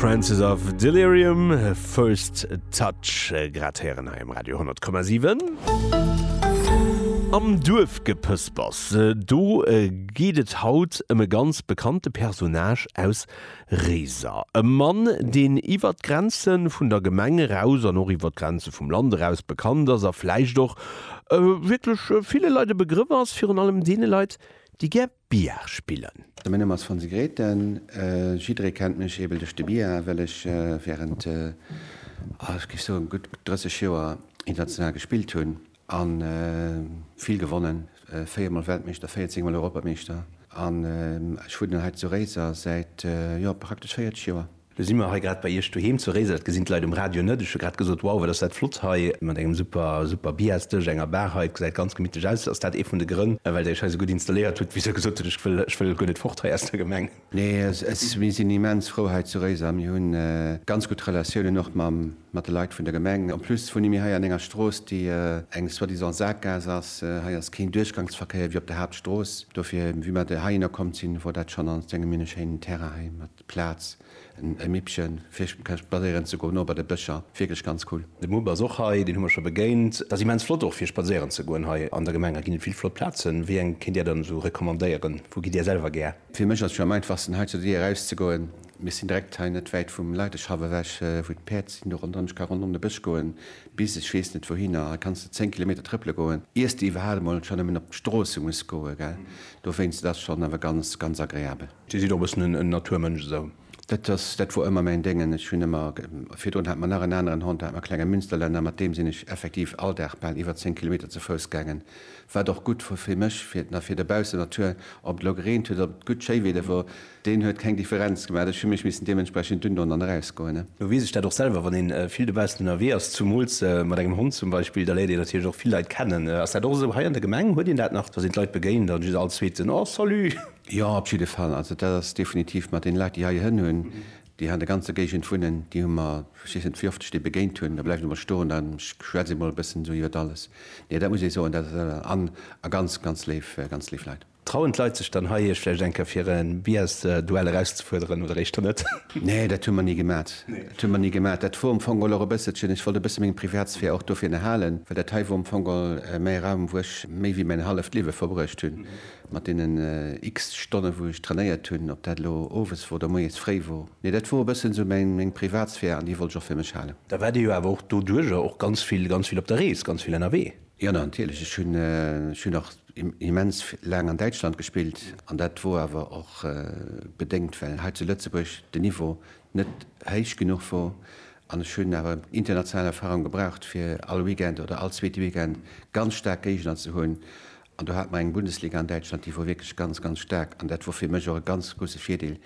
Francis of Delirium, First Touch, äh, grad héieren hei im Radio 10,7. Am Duerfgepëspers, äh, do äh, geet et haut ëm e ganz bekannte Personnage aus Réiser. E Mann, deen iwwer d'Grenze vun der Gemeng eraus an och iwwer d'Grenze vum Land eraus bekannt ass a vläicht och äh, wierklech äh, ville Leit e Begrëff ass, virun allem deene Leit, déi gär Bia spillen. Mäin Numm ass Fonsi Grethen, jidderee kennt mech eebel duerch de Bia, well ech während, ah ech géif soen gutt 30 Joer international gespillt hunn a vill gewonnen, 4 mol Weltmeeschter, 14 mol Europameeschter an ech wunnen hei zu Réiser säit, jo praktesch 40 Joer. Lo si mer hei grad bei Iech doheem zu Réiser. Dat gesinn d'Leit um Radio net. Ech hu grad gesot, wow, wat ass dat flott hei mat engem super, super Biasdësch, enger Bar hei. Et gesäit ganz gemittlech aus. Ass dat ee vun de Grënn, well Der Iech hei esou gutt installéiert hutt? Wéi gesot, ech wëll, ech wëll guer net fort hei aus der Gemeng. Nee, mir sinn immens frou hei zu Réiser. Mir hu ganz gutt Relatiounen och mat de Leit vun der Gemeng. En plus wunne mir hei an enger Strooss, déi eng soi-disant Saakgaass ass. Hei ass keen Duerchgangsverkéier wéi op der Haaptstrooss. Dofir, wéi mer hei hinner komm sinn, wor dat schonn. An et sinn mir en schéinen Terrain hei. D'Plaatz, e Mippchen fir spadséieren ze goen, o bei de Bëscher, wierklech ganz cool. De Mupp ass och hei, deen hu mer scho begéint. Ass immens flott och fir spadséieren ze goen hei an der Gemeng. Hei ginn et vill flott Plazen. Wéi eng kéint Dir dann esou recommandéieren? Wou gitt Dir selwer gär? Fir mech ass jo am einfachsten hei zu Dir eraus ze goen. Mir sinn direkt hei net wäit vum Leideschaff ewech, wou d'Päerd sinn. Do ronderëm, ech ka ronderëm de Bësch goen bis ech weess net wouhinner. Hei kanns de 10 Kilometer trëppele goen, iers de iwwerhaapt emol scho nëmmen op d'Stroosse muss goen, gell? Dowéinst, et ass schonn awer ganz, ganz agreabel. Dir sidd och e bëssen en Naturmënsch, esou? Dat ass, dat wor ëmmer mäin Déngen. Ech hunn ëmmer, virdrun hat mer nach en aneren Hond, da hat mer e klenge Münsterländer, mat deem sinn ech effektiv all Dag bal iwwer 10 Kilometer ze Fouss gaangen, wat och gutt wor fir mech, fir d'Na, fir de baussen Natur, ob et elo gereent huet, ob et gutt Schéiweede wor, deen huet keng Differenz gemaach, ech hu mech missen deementsprechend dunn un an erausgoen. Lo weess ech dat och selwer, wann ee vill dobaussen ënnerwee ass, zumools mat engem Hond zum Beispill, da léiert een natierlech och vill Leit kennen. Ass dat och esou hei an der Gemeng? Huet een dat nach, datt een d'Leit begéint an just all Zweeten, Oh, salut! Jo, op jidde Fall. Also dat ass definitiv mat deene Leit, déi heihirn hunn, déi hei an der ganzer Géigend wunnen, déi hu mer, ech weess net, wéi oft ech déi begéint hunn, da bleiwen se emol stoen an ech schwätze emol e bëssen esou iwwer alles. Nee, dat muss ee soen, dat an a ganz, ganz léif, ganz léif Leit. Trauen d'Leit sech dann hei, Iech vläicht eng Kéier fir e Billars-Duell erauszefuerderen oder éischter net? Nee, dat hu mer ni gemat. Dat hu mer ni gemat. Dat wor am Fong och e bësselchen, ech wollt e bësse meng Privatsphär och dofir erhalen, well dat hei wor am Fong méi e Raum, wou ech méi wéi mäin halleft Liewe verbruecht hunn. Mat deenen x-te Stonne wou ech trainéiert hunn, ob dat elo owes wor oder moies fréi wor, mee dat wor e bëssen esou meng Privatsphär an déi wollt ech och fir mech halen. Da waart Dir jo awer och doduerjer och ganz vill, ganz vill op der Rees, ganz vill ënnerwee? Jo natierlech, ech hunn, ech hunn och immens laang an Däitschland gespillt an dat wor awer och bedéngt well hei zu Lëtzebuerg den Niveau net héich genuch wor an ech hunn awer international Erfahrung gebraucht fir all Weekend oder all zweete Weekend ganz staark Géigner ze hunn An do hat mer eng Bundesliga an Däitschland, déi wor wierklech ganz, ganz staark. An dat wor fir mech och e ganz grousse Virdeel,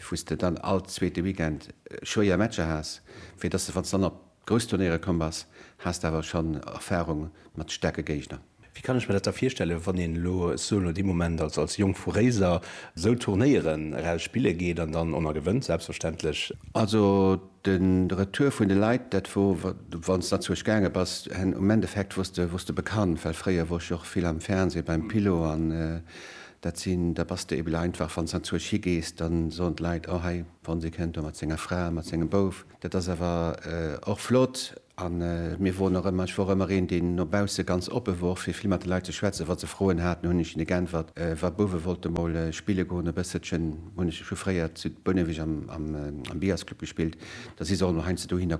wou s de dann all zweete Weekend schwéier Matcher has, fir dass de, wann s de dann op grouss Turnéiere komm bass, has de awer schonn Erfarung mat staarke Géigner. Wéi kann ech mer dat da virstellen, wann een elo sou no deem Moment als als Jong vu Réiser sou Turnéieren eraus spille geet an dann en a gewënnt selbstverständlech? Also De Retour vun de Leit, dat wor, wann s Lëtzebuerg gaange bass, hen um Endeffekt wors de, wors de bekannt, well fréier wor ech och vill am Fernseh beim Pilo an dat sinn, da bass de ebeler einfach, wann s Lëtzebuerg higees, da soen d'Leit, oh hei, wann s ee kënnt do mat senger Fra, mat sengem Bouf, dat ass awer och flott. A mir woren och ëmmer, ech wor ëmmer een, deen no bausse ganz oppe wor, fir vill mat de Leit ze schwätzen. Wa se Froen haten, hunn ech hinne geäntwert. Wa Bouwe wollte mol spille goen e bësselchen, hunn ech scho fréier zu Bouneweg am Byersclub gespillt, da si se och emol heiansdo dohinner komm.